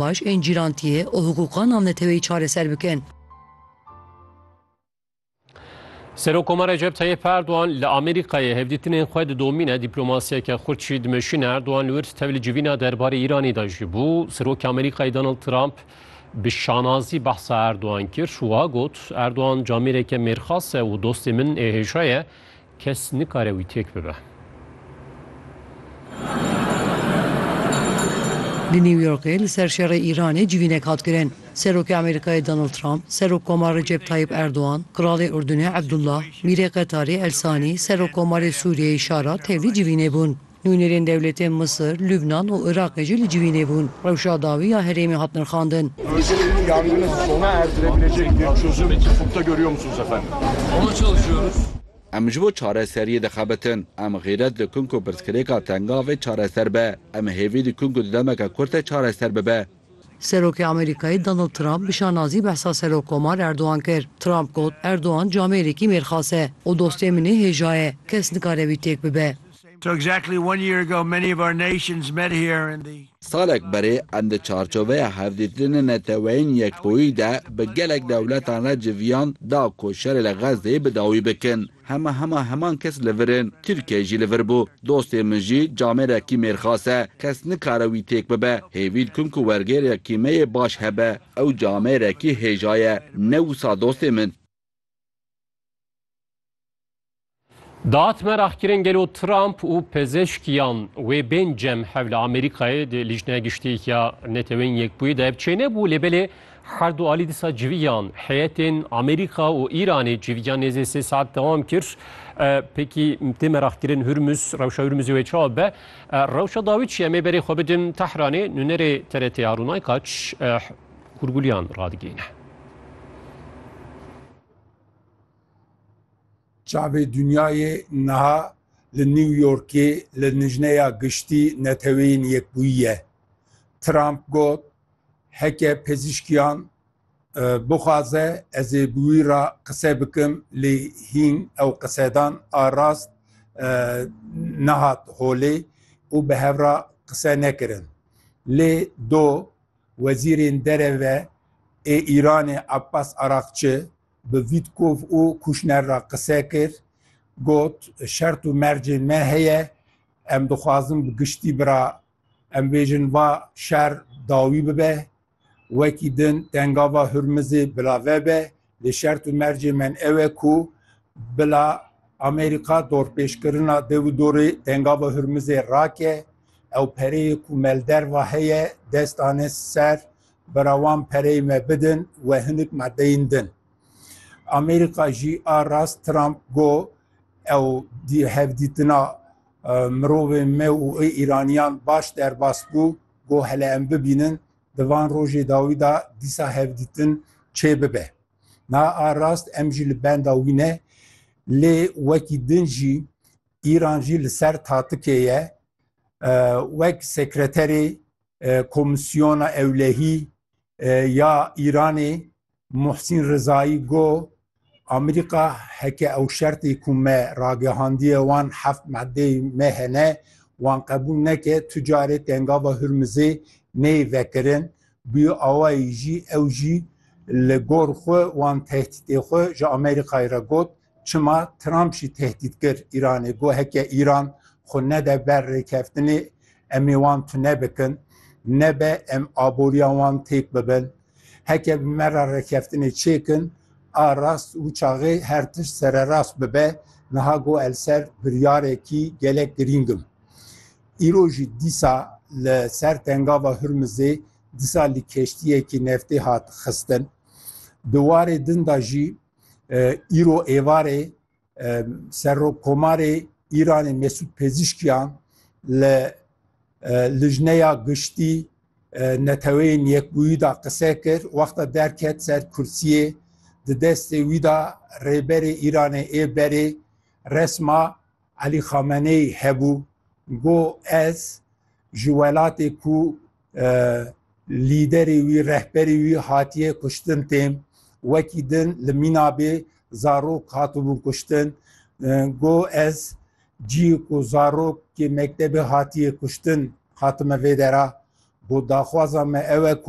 baş ên cîrantiyê û hiqûqa navneteweyî çareser bikin. Serokoma Recep Tayyip Erdogan li Amerîkayê hevdîtinên xwe didomîne, dîplomasiyeke xurt jî dimeşîne. Erdogan li wir tevli civîna derbarê Îranê de jî bû. Serokê Amerîkayê Donald Trump bi şanazî behsa Erdogan kir û wiha got, Erdogan camêreke mêrxas e û dostê min ê hêja ye. Kes nikare wî têk bibe. Li New Yorkê li ser şerê Îranê civînek hat kirin. Serokê Amerîkayê Donald Trump, Serokkoma Recep Tayyip Erdogan, Kralê Urdunê Ebdullah, Mîrê Qetarê El Sanî, Serokkomarê Sûriyeyê Şara tevlî civînê bûn. Nûnerên dewletên Misir, Lubnan û Iraqê jî li civînê bûn. Rewşa dawî ya herêmê hat nirxandin. Meseleyê yangini sona erdirebilecek bir çözüm ufukta görüyor musunuz efendim? Ona çalışıyoruz. Em ji bo çareseriyê dixebitin. Em xîret dikin ku pirsgirêka tenga vê çareser be. Em hêvî dikin ku di demeke kurt de çareser bibe. Serokê Amerîkayê Donald Trump bi şanazî behsa Serokkomar Erdogan kir. Trump got, Erdogan camêrekî mêrxas e û dostê min ê hêja ye. Kes nikare wî têk bibe. Salek berê em di çarçoveya hevdîtinên neteweyên yekbûyî de bi gelek dewletan re civîyan da ku şerê li Xezzeyê bi dawî bikin. Hema hema heman kes li vir in. Tirkiyeyê jî li vir bû. Dostê min jî camêra kîmêrxas e. Kes nikare wî têk bibe. Hêvî dikim ku wergêrya kîmeyê baş hebe. Ew camêrekî hêja ye. Ne wisa dostê min. Daat meraq kirin gelo Trump û pezeshkiyan wê bên cem hev li Amerîkayê di Lîjneya Giştî ya Neteweyên Yekbûyî de ev çênebû lê belê Her du alî dîsa civiyan heyetên Amerîka û Îranê civiyan nêzê sê saet dewam kir. Pêkî tê meraqkirin Hurmuz, rewşa Hurmuzê wê çawa be. Rewşa dawî çi ye? Em ê berê xwe bidin Tehranê. Nûnerê TRT'ê Harûn Aykaç hûrgulîyan radigihîne. Çavê Dinyayê niha li New Yorkê li Lijneya Giştî Neteweyên Yekbûyî ye. Trump got Heke pezîşkiyan bixwaze ez ê bi wî re qise bikim lê hîn ew qisedan a rast nehat holê û bi hev re qise nekirin. Lê do Wezîrên Dereve ê Îranê Abbas Araqçi bi Vîtkov û Kûşner re qise kir, got, Şert û mercên me heye, em dixwazin bi giştî bi re Em bêjin va şer dawî bibe, wekî din tengava Hurmizê bila vebe, lê şert û mercê men ew e ku bila Amerîka dorpêşkirina dev û dorê tengava Hurmizê rake, ew pereyê ku melderva heye dest ane ser, bira wan pereyê me bidin we hinik madeyên din. Amerîka jî a rast Trump got ew hevdîtina Mirovên me û ê Îraniyan baş derbas bû ku hele em bibînin di van rojê dawî de dîsa hevdîtin çê bibe. Na a rast em jî li benda wî ne lê wekî din jî Îran jî li ser tatikê ye wek sekreterê Komîsyona Ewlehî ya Îranê Muhsîn Rizayî got, Amerîka heke ew şertê ku me ragihandiye wan heft maddeyê me hene, wan qebûl neke, tu carê Tengava Hurmizê neyê vekirin. Bi awayî jî ew jî li gor xwe wan tehdîtê xwe ji Amerîkayê re got. Çima Trump jî tehdît kir Îranê got heke Îran xwe nede ber rêkeftinê em ê wan tune bikin, nebe em aboriya wan têk bibin. Heke bi me re rêkeftinê çêkin a rast û çaxê her tişt sererast bibe, niha got el ser biryarekî gelek girîng im. Îro jî dîsa li ser tengava Hurmizê disa li keştiyekî neftê hat xistin. Di warê din de jî îro êvarê Serokkomarê Îranê Mesûd Pezîşkiyan li Lijneya Giştî Neteweyên Yekbûyî da qise kir, wexta derket ser kursiyê di destê wî da Rêberê Îranê ê berê resma Elî Xameneyî hebû got, Ez ji welatê ku lîderê wî, rehberê wî hatiye kuştin têm. Wekî din li mînabê zarok hatibûn kuştin. Got, Ez cî ku zarokê mektebê hatiye kuştin hatime vê dera. Got, Daxwaza me ew e ku